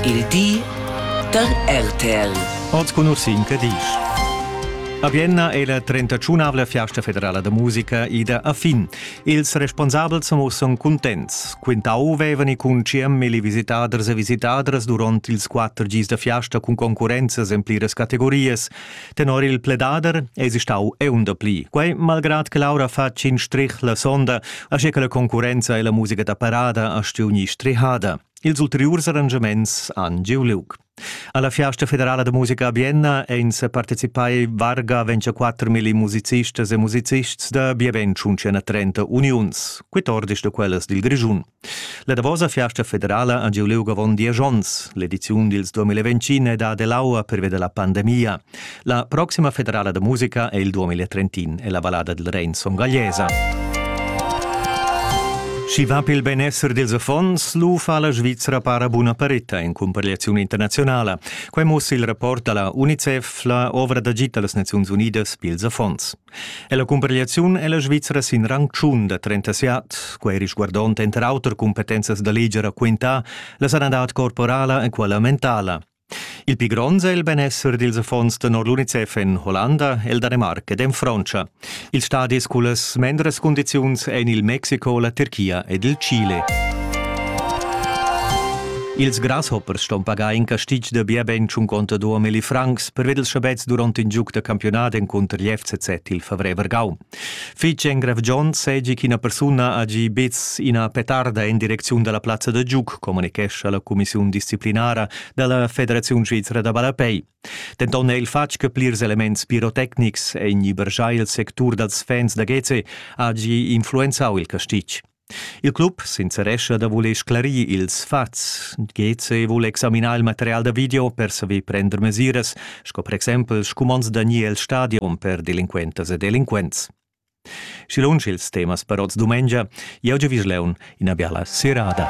Il di da RTL. Oz conoscin che disch. A Vienna è la 31avla fiasta federala da musica ida a fin. Ils responsabels mussan contents. Quintau vevani cun CML visitaders e visitadras durant ils quatter gis da fiasta cun concurrenzas en pliras categorias, Tenor il pledader esi stau eun dapli. Quei malgrad che Laura fa tschin strich la sonda, asche che la concurrenza e la musica da parada ha stiuni strihada. Ils ulteriurs arrangiaments han giu liug. Alla Fiasta federala da musica a Bienna ein se partecipai varga 24.000 musicistas e musicists da bien 130 uniuns, quitordis da quellas dil Grischun. La davosa fiasta federala ha giu liug avon diesch onns. L'ediziun dils 2025 è da dell'aua pervia la pandemia. La proxima federala da musica è il 2031 e la vallada del Rein son gallesa. Schi va pel benessere dels affons, lu fa la Svizzera para buna paretta in comparegliazione internazionala. Quei mussa il rapport dalla UNICEF, la ovra d'agit dallas Nazions Unidas pils affons. E la cumparegliaziun è la Svizra sin rang tschun da 37. Quai risguardond enter auter cumpetenzas da leger quintà, la sanadad corporala e quella mentala. Il pli grond è il benessere dils affons tenor l'UNICEF en Hollanda, el Danemarc ed en Frontscha. Ils stadis cullas mendras cundiziuns ein il Mexico, la Turchia ed il Chile. Ils grasshoppers ston pagar in castig da bia ben 52 milli francs prevedes schabets durant in giug da campiunat encunter gli FCZ il favrer Vargau. Fitg engrav John segi ch'ina persuna ha gi bez ina petarda en direcziun dalla plazza da giug, communichescha la cumissiun disciplinara dalla Federaziun Svizra da Ballapei. Denton è il fatg che plirs elements pirotecnics en ibergiai il sectur dals fans da Geze ha gi influenzau il castig. Il club sincerescha da voler sclarir ils fats. GC vul examinar il material da video per saver prender mesiras, sco per exempel scumonds da ni el stadion per delinquentas e delinquents. Schi lunsch ils temas per oz dumengia, jau giavisch leun ina biala serada.